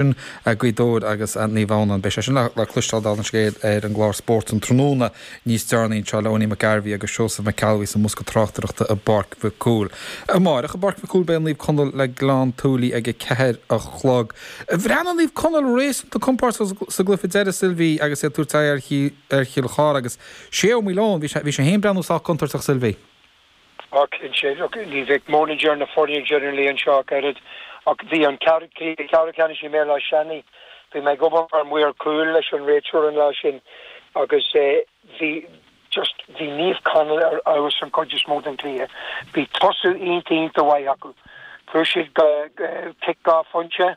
sin ag Gaoth Dobhair agus an Naomh Adhamhnáin. Beidh sé sin le cloisteáil, dála an scéil, ar an gclár Spórt an tráthnóna níos deireanaí anseo, le hEoghainí Mac Gairbheith agus Seosamh Mac Ceallbhuí sa mbosca tráchtaireachta i bPáirc Mhic Cumhaill. Amárach i bPáirc Mhic Cumhaill beidh Naomh Conaill agus Gleann tSúilí ag a ceathair a chlog. Bhreathnaigh Naomh Conaill réasúnta compordach sa gcluiche deiridh, Sylvie, agus iad ag tabhairt aghaidh ar Chill Chartha agus Shay Ó Maoileoin. Bhí sé féin ag breathnú sách contúirteach, Sylvie. Ach anois, look, ní bheadh manager na foirne generally anseo ach oiread, ach bhí an cluiche ceathrú ceannais i mBéal Átha Seanaidh, bhí mé ag obair mar mhaor cúil leis an réiteoir an lá sin agus bhí just, bhí Naomh Conaill ar fheabhas an chuid is mó den cluiche. Bhí tosú iontach, iontach maith acu. Fuair siad go, cic dhá phointe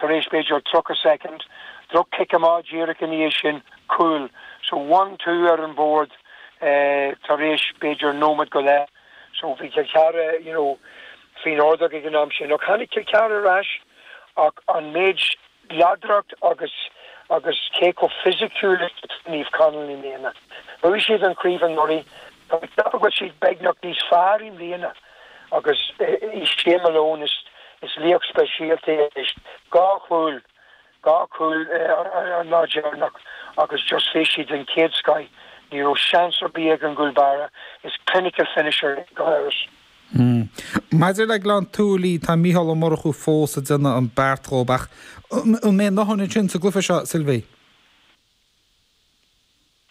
tar éis b'fhéidir tríocha soicind, droch-chic amach díreach ina dhiaidh sin, Cúl. So one two ar an bhord tar éis b'fhéidir nóimead go leith. So bhí Cill Chartha you know faoin ordóg ag an am sin ach tháinig Cill Chartha ar ais ach an méid láidreacht agus agus cé chomh fisiciúil is a bhí Naomh Conaill i mbliana. Bhuaigh siad an chraobh anuraidh. Tá mé ag ceapadh go bhfuil siad beagnach níos fearr i mbliana agus is é Shay Malone is laoch speisialta é anois. Dhá chúl. Dhá chúl an lá deireanach agus just bhí siad den chéad scoith. Ní raibh seans ar bith ag an gcúl báire, is clinical finisher é go háirithe. Maidir le Gleann tSúilí, tá Micheál Ó Murchú fós ag déanamh an beart dhób ach an mbeidh a ndóthain ansin sa gcluiche seo, Sylvie?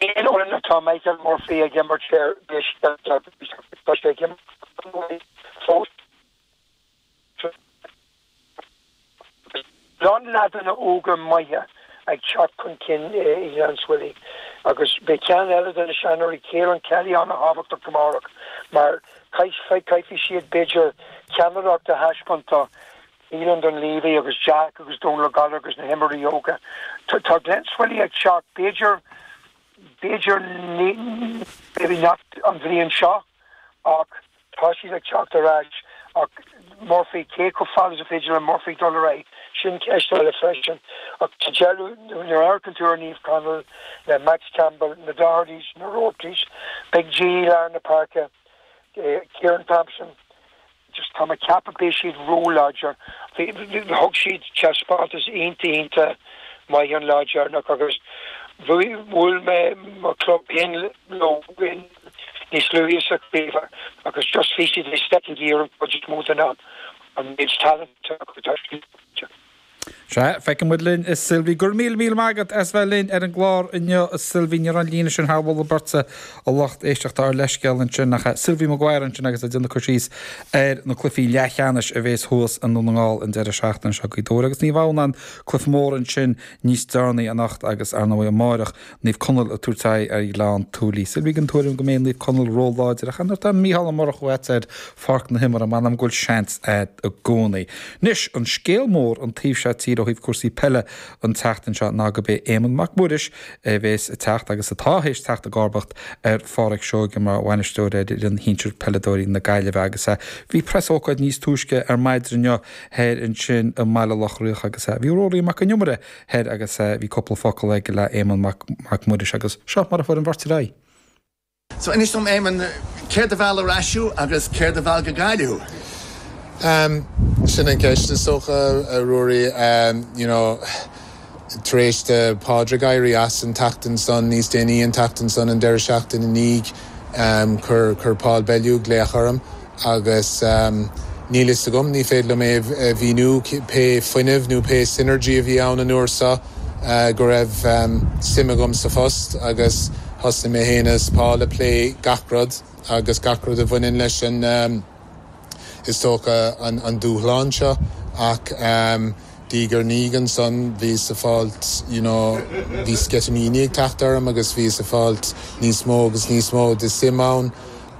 Aon fhoireann atá Michael Murphy ag imirt orthu, tá sé ag imirt go maith fós. lán leaideanna óga maithe ag teacht chun cinn i nGleann tSúilí agus beidh ceann eile de na seanóirí, Caolán Kelly, an-tábhachtach amárach mar caithfidh siad, b'fhéidir, ceannaireacht a thaispeáint do Keelan Dunleavy agus Jack agus Dónal Ó Gallchóir agus na himreoirí óga. Tá Glen Swilly ag teacht, b'fhéidir, b'fhéidir, maybe not an bhliain seo ach. Tá siad ag teacht ar ais, ach Murphy, cé chomh fada is is féidir le Murphy dul ar aghaidh, sin ceist eile freisin. Ach sa deireadh, nuair a amharcann tú ar Naomh Conaill le Max Campbell, na Dohertys, na Roartys, Big G i lár na páirce, Ciarán Thompson, just tá mé ag ceapadh beidh siad róláidir. Thug siad taispeántas iontach maith an lá deireanach agus bhuail siad mo chlub féin leo. Níos luaithe sa chraobh agus just bhí siad ag stepping gear an chuid is mó den am, an méid talent atá acu tá siad ag teacht. Sea, feiceann muid linn a Sylvie. Go raibh míle míle maith agat as bheith linn ar an gclár inniu a Sylvie. Ní raibh an líne sin thar mholadh beirte, a lucht éisteachta ár leithscéal ansin, ach Sylvie Maguire ansin agus ag déanamh cur síos ar na cluichí leathcheannais a bhéas thuas i nDún na nGall an deireadh seachtaine seo. Gaoth Dobhair agus Naomh Adhamhnáin, cluiche mór ansin níos deireanaí anocht agus ar ndóigh amáireach. Naomh Conaill ag tabhairt aghaidh ar Ghleann tSúilí. Sylvie den tuairim go mbeidh Naomh Conaill ró-láidir, ach nuair atá Micheál Ó Murchú a'd ar pháirc na himeartha, m'anam go bhfuil seans agat i gcónaí. Anois, an scéal mór an taobh seo tíre ó thaobh cúrsaí peile an tseachtain seo ná gurb é Éamonn Mac Muiris a bhéas ag teacht, agus atá théis teacht, i gcomharbacht ar Phádraic Seoighe mar bhainisteoir ar fhoireann shinsir peileadóirí na Gaillimhe. Agus bhí preasócáid níos túisce ar maidin inniu thoir ansin i mBaile Locha Riach agus bhí Ruairí Mac Con Iomaire thoir agus bhí cúpla focal aige le Éamonn Mac Muiris agus seo mar a fuair an bheirt ar aghaidh. So, inis dom Éamonn, céard a mheall ar ais thú agus céard a mheall go Gaillimh thú? Ehm, sin an ceist is dócha, a Ruairí. Ehm, you know, tar éis do Phádraig éirí as an tseachtain san, níos déanaí an tseachtain san, an deireadh seachtaine i ndiaidh, ehm, chuir, chuir Paul Bellew glaoch orm. Agus níl fhios agam, ní féidir liom é a mhíniú, pé fuinneamh nó pé synergy a bhí ann an uair so, go raibh suim agam sa phost agus thosnaigh mé féin agus Paul a plé gach rud agus gach rud a bhaineann leis an, is dócha, an dúshlán seo. Ach diaidh ar ndiaidh ansan, bhíos ag fáilt, you know, bhí sceitimíní ag teacht orm agus bhíos ag fáilt níos mó agus níos mó de suim ann.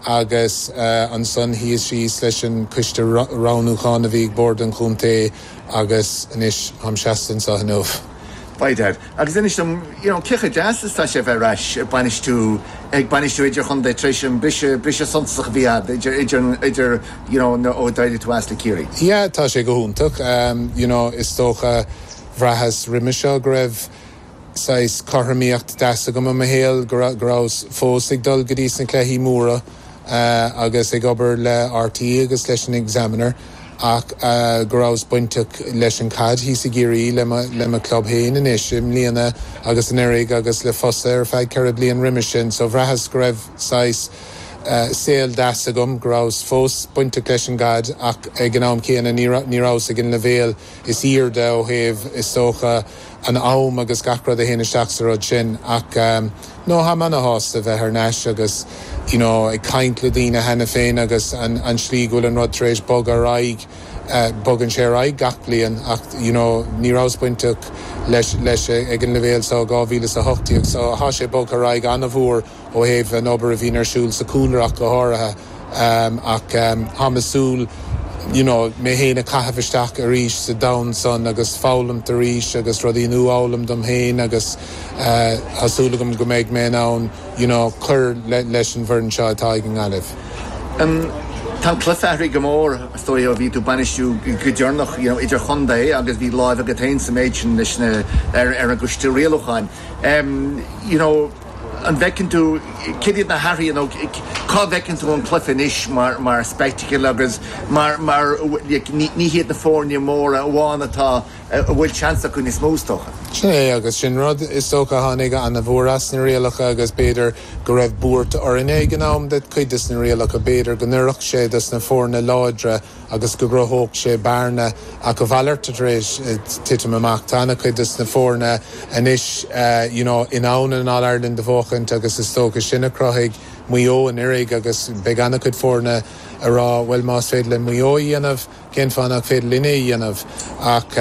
agus ansan shuíos síos leis an coiste roghnúcháin a bhí ag bord an chontae agus anois táim seasta anseo inniu. Peadar, Agus inis dom, you know, cé chomh deas is atá sé a bheith ar ais ag bainistiú, ag bainistiú idir-chontae tar éis an briseadh, briseadh suntasach a bhí a'd idir, idir, idir, you know, nuair, ó d'éirigh tú as le Ciarraí? Yeah, tá sé go hiontach. You know, is dócha, bhraitheas roimis seo go raibh, saghas cothromaíocht deas agam i mo shaol, go rabhas fós ag dul go dtí na cluichí móra agus ag obair le RTÉ agus leis an Examiner ach go rabhas bainteach leis an caid thíos i gCiarraí le mo club féin anois i mbliana agus anuiridh agus le Fosadh ar feadh ceithre bliain roimis sin. So bhraitheas go raibh saghas saol deas agam, go rabhas fós bainteach leis an gcaid ach ag an am céanna ní rabhas ag an leibhéal is aoirde ó thaobh is dócha, an am agus gach rud a théann isteach sa rud sin ach no tháim ana-shásta bheith thar n-ais agus you know ag caint le daoine cheana féin agus an an tslí go bhfuil an rud tar éis bogadh ar aghaidh bogann sé ar aghaidh gach bliain ach you know ní rabhas bainteach leis leis ag an leibhéal seo ó 2018 so thá sé bogtha ar aghaidh ana-mhór ó thaobh an obair a bhíonn ar siúl sa chúlrach go háirithe, ach táim ag súil le you know mé féin a chaitheamh isteach arís sa domhan san agus foghlaim arís agus rudaí a nuafhoghlaim dom féin agus tá súil agam go mbeidh mé in ann you know cur leis an bhfoireann seo atá ag an nGaillimh. Tá an cluiche athraithe go mór, is dóigh ó bhí tú ag bainistiú go deireanach you know idirchontae agus bhí lámh agat féin sa méid sin leis na ar an gcoiste rialúcháin. You know. An bhfeiceann tú céard iad na hathruithe nó cá bhfeiceann tú an cluiche anois mar spectacle agus mar, mar, ní hiad na foirne móra amháin atá, a bhfuil seans acu níos mó is dócha? Sin é agus sin rud is dócha a tháinig ana-mhór as na rialacha agus b'fhéidir go raibh buairt orainne ag an am do chuid des na rialacha b'fhéidir go n-oirfeadh sé dos na foirne láidre agus go gcruthódh sé bearna, ach a mhalairt, atá tar éis titim amach. Tá an-chuid de na foirne anois you know in ann an All-Ireland a bhuachaint agus is dócha sin a chruthaigh Maigh Eo anuiridh agus beidh an-chuid foirne ag rá bhuel más féidir le Maigh Eo é a dhéanamh cén fáth nach féidir linne é a dhéanamh ach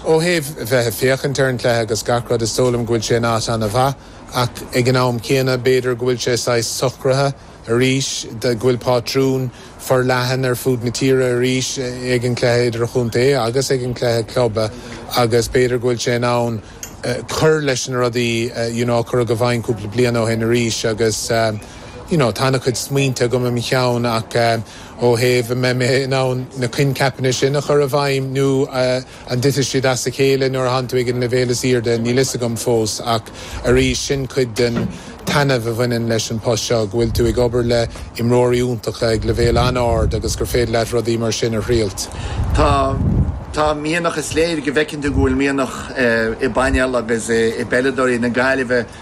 ó thaobh bheith ag féachaint ar an chluiche agus gach rud is dóigh liom go bhfuil sé in áit an-mhaith ach ag an am céanna b'fhéidir go bhfuil sé saghas socraithe arís, go bhfuil pátrún forleathan ar fud na tíre arís ag an gcluiche idirchontae agus ag an gcluiche club agus b'fhéidir go bhfuil sé in am cur leis na rudaí you know a cuireadh i bhfeidhm cúpla bliain ó shin arís agus you know tá ana-chuid smaointe agam i mo cheann ach ó thaobh an mbeidh mé in ann na coincheapanna sin a chur i bhfeidhm nó An dtitfidh siad as a chéile nuair atánn tú ag an leibhéal is airde? Níl a fhios agam fós, ach arís, sin cuid den taitneamh a bhaineann leis an post seo, go bhfuil tú ag obair le imreoirí iontacha ag leibhéal an-ard agus gur féidir leat rudaí mar sin a thriailt. Tá, tá mianach, is léir go bhfeiceann tú go bhfuil mianach i bpainéal agus i bpeileadóirí na Gaillimhe.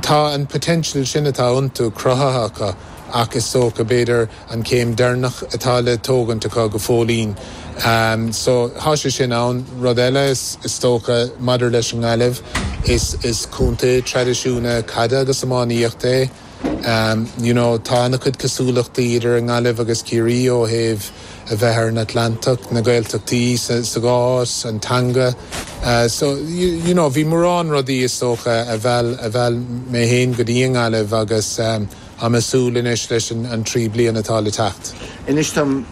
Tá an potential sin atá iontu cruthaithe acu ach is dócha, b'fhéidir, an céim deireanach atá le tógaint acu go fóillín. So, tá sé sin ann. Rud eile, is dócha, maidir leis an nGaillimh, is contae traidisiúnta caide agus iománaíochta é. Um you know tá an-chuid cosúlachtaí idir an nGaillimh agus Ciarraí ó thaobh a bheith ar an Atlantach, na Gaeltachtaí sa sa gcás, an teanga eh so you you know bhí mórán rudaí is dócha a mheall a mheall mé fhéin go dtí an nGaillimh agus em tá mé ag súil anois leis an an trí bliana atá le teacht. Inis dom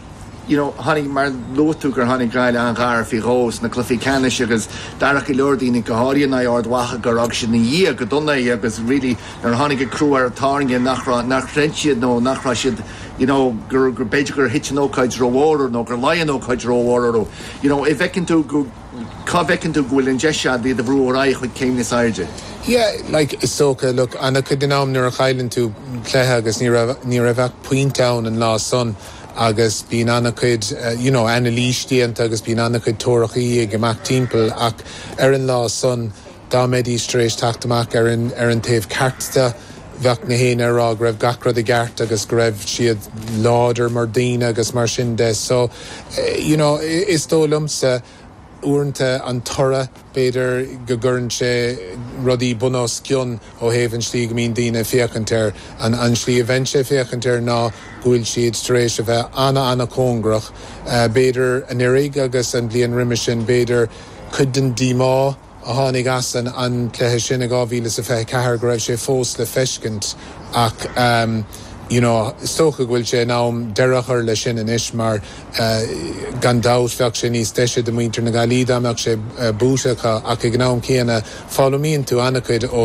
you know tháinig, mar luaigh tú gur tháinig Gaillimh an-ghar faoi dhó sna cluichí ceannais agus d'airigh go leor daoine, go háirithe in aghaidh Ard Mhacha, gur fhág siad ina ndiaidh go dona é agus really nuair a tháinig an crú ar an tairne nach raibh, nár chreid siad nó nach raibh siad you know gur, gur, b'fhéidir gur thit an ócáid rómhór orthu nó gur laigh an ócáid rómhór orthu you know eh cá bhfeiceann tú go, cá bhfeiceann tú go bhfuil an deis ann iad a bhrú ar aghaidh chuig céim níos airde? Yeah like is dócha, look an-chuid den am nuair a chailleann tú cluiche agus ní raibh, ní raibh ach pointe ann an lá san, agus bíonn ana-chuid you know anailís déanta agus bíonn ana-chuid tuairimí ag imeacht timpeall ach ar an lá san dá mbeidís tar éis teacht amach ar an ar an taobh ceart de bheadh gach éinne ag rá go raibh gach rud i gceart agus go raibh siad láidir mar dhaoine agus mar sin de so you know is dóigh liomsa Uaireanta an toradh, b'fhéidir, go gcuireann sé rudaí bun os cionn ó thaobh an slí go mbíonn daoine ag féachaint air. An slí a bheinnse ag féachaint air ná go bhfuil siad tar éis a bheith an-an-chóngarach, b'fhéidir an oiread agus an bhliain roimis sin, b'fhéidir cuid den díomá, a tháinig as an cluiche sin i 2024 go raibh sé fós le feiscint ach you know is dócha go bhfuil sé in am deireadh a chur leis sin anois mar gan dabht bheadh sé níos deise do muintir na Gaillí dá mbeadh sé buaite acu ach ag an am céanna foghlaimíonn tú ana-chuid ó